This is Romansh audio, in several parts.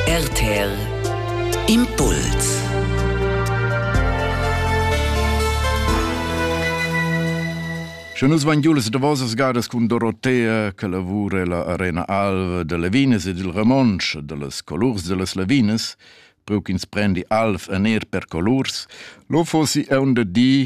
RTL Impuls Sche nus vain giu las davosas gadas cun Dorotea che lavura la Arena Alva de Levinas ed il Ramonsch de las colurs de las Levinas, preu ch'ins prendi alv en er per colurs, lo fossi eun de di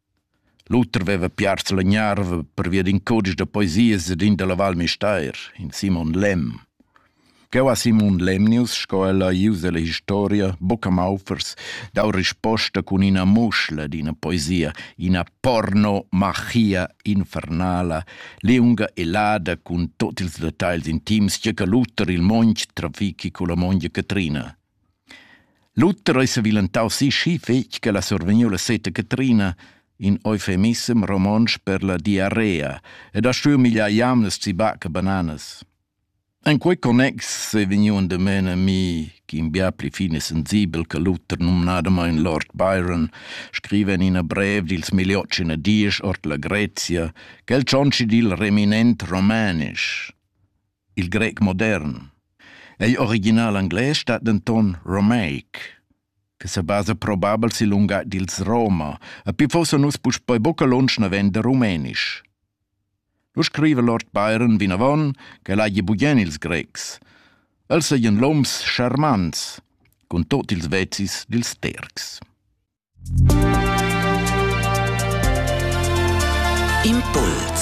L'oter veva piars la gnarva pervia d'in cudisch da poesias ed in dalla Val Müstair, in Simon Lemm. Cheu ha Simon Lemnius, sco el ha ius ella historia, buca maufers, dau risposta cun ina muschla d'ina poesia, ina porno-machia infernala, liunga e lada cun tut ils detagls intims che che l'uter il monch trafichi culla mongia Catrina. Luther ei sevilentau sischi fetg ch'el ha survegniu la seta Catrina, in eufemissem romontsch per la diarrea, ed ha stuiu migliar jamnas zibac e bananas. En quei connex ei vegniu endamen a mi, ch'in bia pli fin e sensibel che Luther, numnadamein Lord Byron, scriva en ina brev dils Miliotts in a diesch ord la Grezia, ch'el tschontschi dil reminent romanisch. Il grec modern. Ei original englais stat denton romaic, che sebasa probabel sil lungatg dils Roma, e pli fossa nus puspei buca lunsch naven da rumenisch. Lu scriva Lord Byron vinavon ch'el hagi bugen ils Grecs. Els seigien loms scharmants, cun tot ils vezis dils Tercs. Impuls